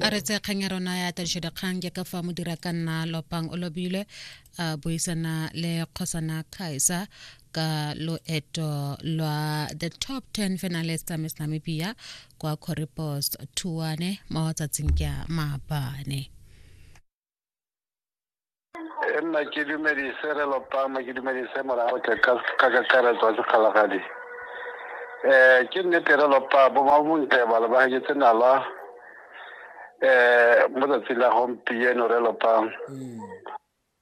a re tse kgang ya rona ya tadišodikgang jaaka fa modira ka nna lopang o lobile a buisana le kgosana kaiser ka loeto lwa the top 10 finalist tsa miss namibia kwa corripost tuane mo tsatsing kya maabane e nna ke dumedise re lopama ke dumedise morago ke ka ka kakaretso wa sekgalagadi um ke nnete re lopa bomabontle ba lebagetse nala um mo tsatsing la gompieno re lopang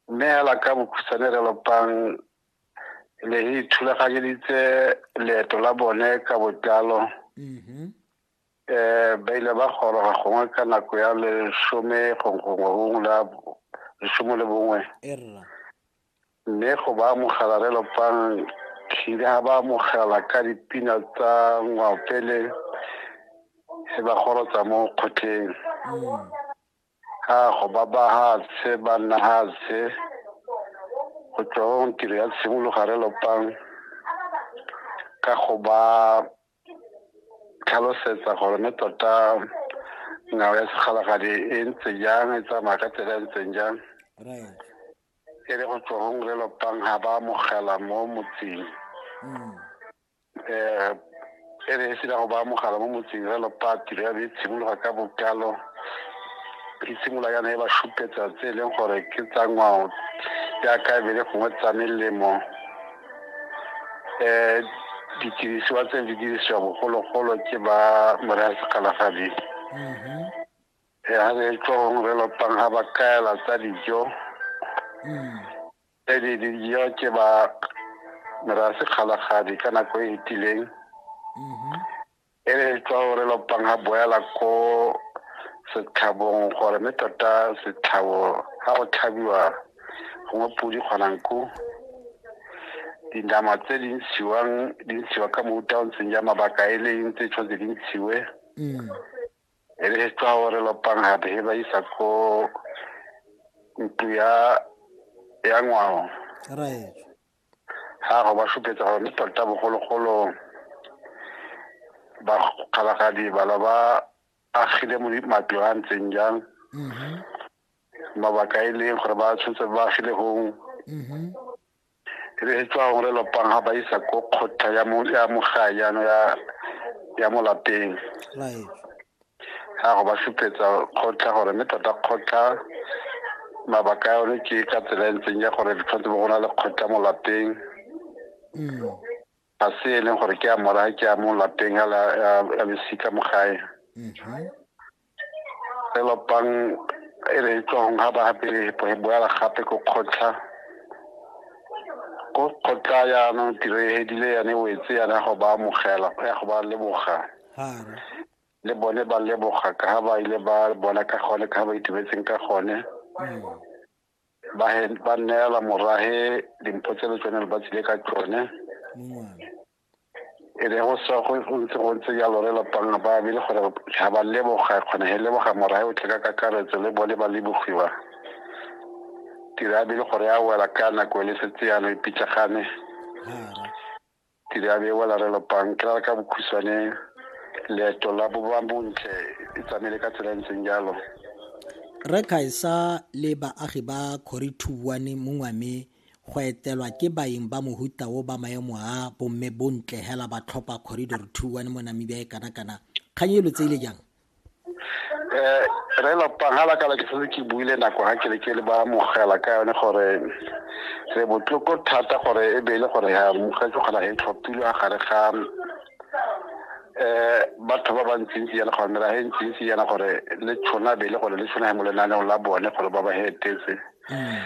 mme hela ka bokhutshwane re lopang le e ithulaganyeditse leeto la bone ka botlalo um ba ile ba goroga gongwe ka nako ya lesome gongwe gongwe la lesome le bongwe mme go ba amogela re lopang tlhile ga ba amogela ka dipina tsa ngwapele e ba gorotsa mo kgotleng mm. ga go ba ba gatse ba nna gatse go tswa tiro ya tshimologa re lopang ka go ba tlhalosetsa gore mme tota ngwao ya segalagadi e ntse jang e tsamaya ka tsela e ntseng jang e le go tswa gong le lopang ga ba amogela mo motseng um e re e sena go ba amogela mo motseng re lopaa tiro ya be e tshimologa ka bokalo e simolola yana e ba supetsa tse e leng gore ke tsa ngwao jaaka e be le gongwe tsa melemo um ditirisiwa tse di dirisiwa bogologolo ke ba moraya sekgalagadi mm-hmm. eh, ga re tlong re lotang ga ba kaela tsa dijo mm. tse di dijo ke ba moraya sekgalagadi ka nako e fetileng mm-hmm. e re tswa o re lopang a boela ko setlhabong gore mme tota setlhabo ga go tlhabiwa gongwe podi kgonang ko dinama tse di ntshiwang di ntshiwa ka mouta o ntseng ja mabaka e le eng tse tshwanetse di ntshiwe mm. e re tswa o re lopang gape he ba isa ko ntlo ya ya ngwao ga go ba supetsa gore le tota bogologolo bakgalagadi bala ba agile matlo a ntseng jang mm-hmm. mabaka e leng gore ba tshwanetse ba agile gong mm-hmm. e be e tswa gore lopang ga ba isa ko kgotla ya mogae jaano ya mo lapeng ya go ba supetsa kgotla gore mme tota kgotla mabaka a yone ke ka tsela e ntseng ya gore di tshwanetse bo go na le kgotla mo lapeng mm. ga se e leng gore ke a mora ke a mo lapeng a losika mo gae mm-hmm. e lopang e re e tswang ga ba gape e boela gape ko kgotla ko kgotla yaanong tiro e hedile yane o etse yana go ba amogela ya go ba leboga le bone ba leboga ka ha ba ile ba bona ka gone ka ha ba itumetseng ka gone ba he- ba neela morage dimpho tse le tsone le ba tsile ka tsone e re go sa go go ntse go ntse jalo re lapang ba bile gore ga ba leboga kgone he leboga morage o tle ka kakaretso le bone ba lebogiwa tira a bile gore a wela ka nako e le setse yana e pitlagane ke di abie wala re lopang ke rara ka bokhutshwane leeto la boba bontle e tsamaile ka tsela e ntseng jalo re kgaisa le baagi ba kgori thuwane mongwame go etelwa ke baeng ba mohuta o ba maemo a bomme bontle hela ba tlhopha corridor two one mo namibia e kana-kana kgang e lo tseile jang eh re lo pangala ka ke setse ke buile nako ga ke le ke le ba mogela ka yone gore re botloko thata gore e be le gore ya mogetse kgona e tlhophile a gare ga eh batho ba bantsintsi yana gore mera he ntsintsi yana gore le tshwana be le gore le tshwana mo lenaneng la bone gore ba ba hetetse mm.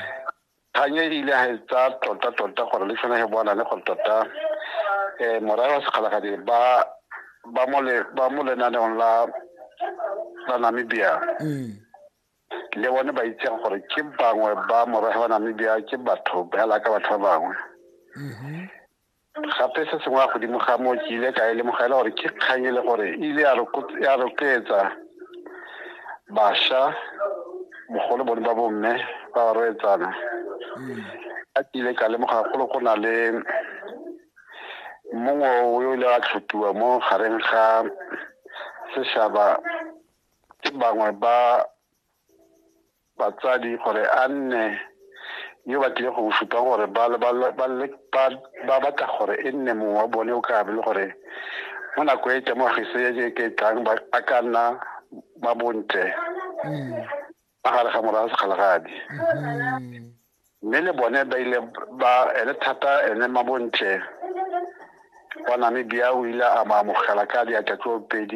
kgang e ile ga e tsaya tota-tota gore le sone ge bona le gore tota um morae wa sekgalagadi ba ba mo lenaneong la la namibia mm. le bone ba itseng gore ke bangwe ba morae wa namibia ke batho ba yalaka batho ba bangwe mm-hmm. gape se sengwe ya godimo ga moo ke ile ka e lemoga e le gore ke kgang e le gore e ile ya rotloetsa basha bogolo bone ba bomme ba ba roetsana mm. a ke ile ka lemoga golo go na le mongwe o yo ile a tlhopiwa mo gareng ga seshaba ke bangwe ba batsadi gore a nne yo ba tlile go supa gore ba batla gore e nne mongwe wa bone o ka be le gore mo nako e temogiso e ke tlang ba ka nna ba bontle ba gare ga morago sekgalagadi mme le bone ba ile ba ene thata ene mabontle wa namibia o ile a mo amogela ka diatla tso pedi